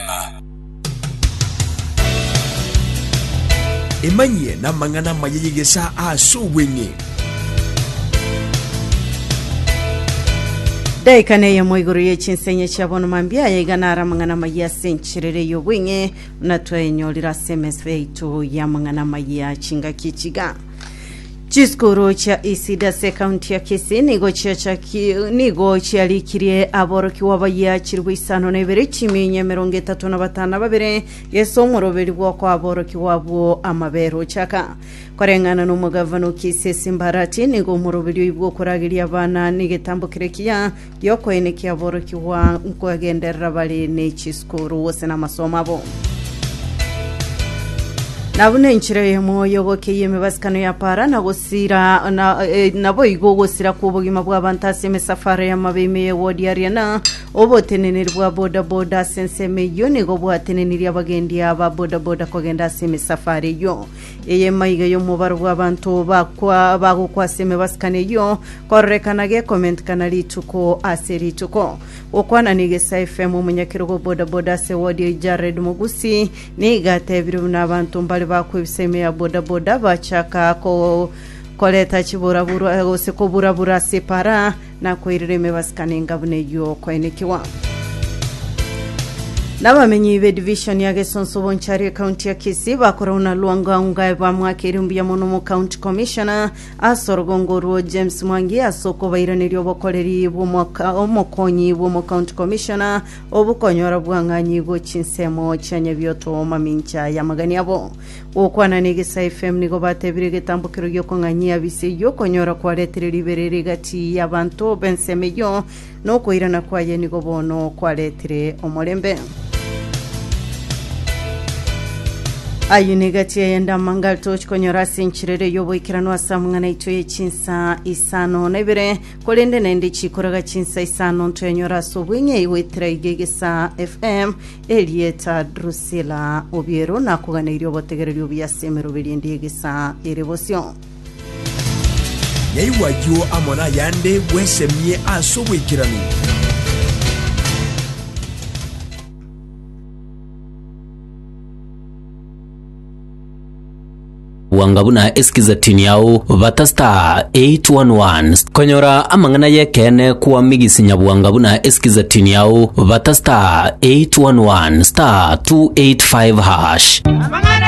ng'a. Emanyie namang'ana amaya y'egesaa ase obweng'e. Daika neyemo igoro ye chinsenye chia bono mambia aya iga naro amang'ana amayia ase encherere y'obweng'e buna twayenyorire ase emeso yaito y'amang'ana amayia chingaki chiga. Chisukuru chia Isidasi ekaunti ya Kisii nigo chiachaki- nigo chiarikirie aborokigwa bayia chilifu isano na ibere chimiinye emerongo etato na batano na babere gese omoroberi bw'okoa aborokigwa abwo amabera ochaka koreng'ana na omogavana o Kisii Simbarati nigo omoroberi oibwa okorageria abana negetambo keria kiya y'okoenekia borokigwa nkogenderera bare ne chisukuru gose n'amasomo abo. Na buna enchera eyemo y'ogokeyia emibasikano ya para na gosira na, eh, naboigo gosira kw'obogima bw'abanto ase emisafara y'amabe ime y'egodiaria na oboteneneri bwa bodaboda ase ensemo eyio nigo bwatenenirie abagendi aba bodaboda kogenda ase emisafara eyio eye maiga y'omobaro bw'abanto bakwa bagokwa ase emibasikano eyio Kororekana gecomment kana rituko ase rituko. Gokwana na Egesa FM omonyakerogo o boda boda ase ward eye Jared Mogusi niga atebire buna abanto mbare bakwebisa ime ya boda boda bachaka ko koreta chiburabura gose koburabura ase epara na koirera ime basikane enga buna eyio okoenekiwa. Nabamenyi be division ya Gesonso Bonchari ecounty ya Kisii bakorana na Lwangaunga bamwakere mbuya mono mu county commissioner Ase orogongo orwo, James Mwangi ase okobairaneria obokoreri bw'omwaka omokonyi bw'omocounty commissioner obokonyora bwang'anyi go chinsemo chia Nyabioto mamincha y'amagani abo. Gokwana n'Egesa FM nigo batebire egetambokero gi'okong'anyia bise eyio okonyora kwaretire ribereri gati y'abanto b'ensemo eyio Nokoirana kwaye nigo bono kwaretire omorembe. Ayio nigo etia yende amanga aria tochikonyora ase enchera eria y'oboikeranu ase amang'ana aito ye chinsa isano na ibere, korende naende chikoraga chinsa isano ntoyanyore ase obweng'ei goetera iga egesaa FM erieta Drusilla Obiero nakoganeirie obotegereri obuya ase emeroberi ende y'egesaa ere bosio. Yaigwa ayio amo nayande, bwesemie ase oboikeranu. Bwanga buna Eskizatini yao bata star 811 st- konyora amang'ana yekene kwa migisi nyabwanga buna Eskizatini yao bata star 811 star 285 hash.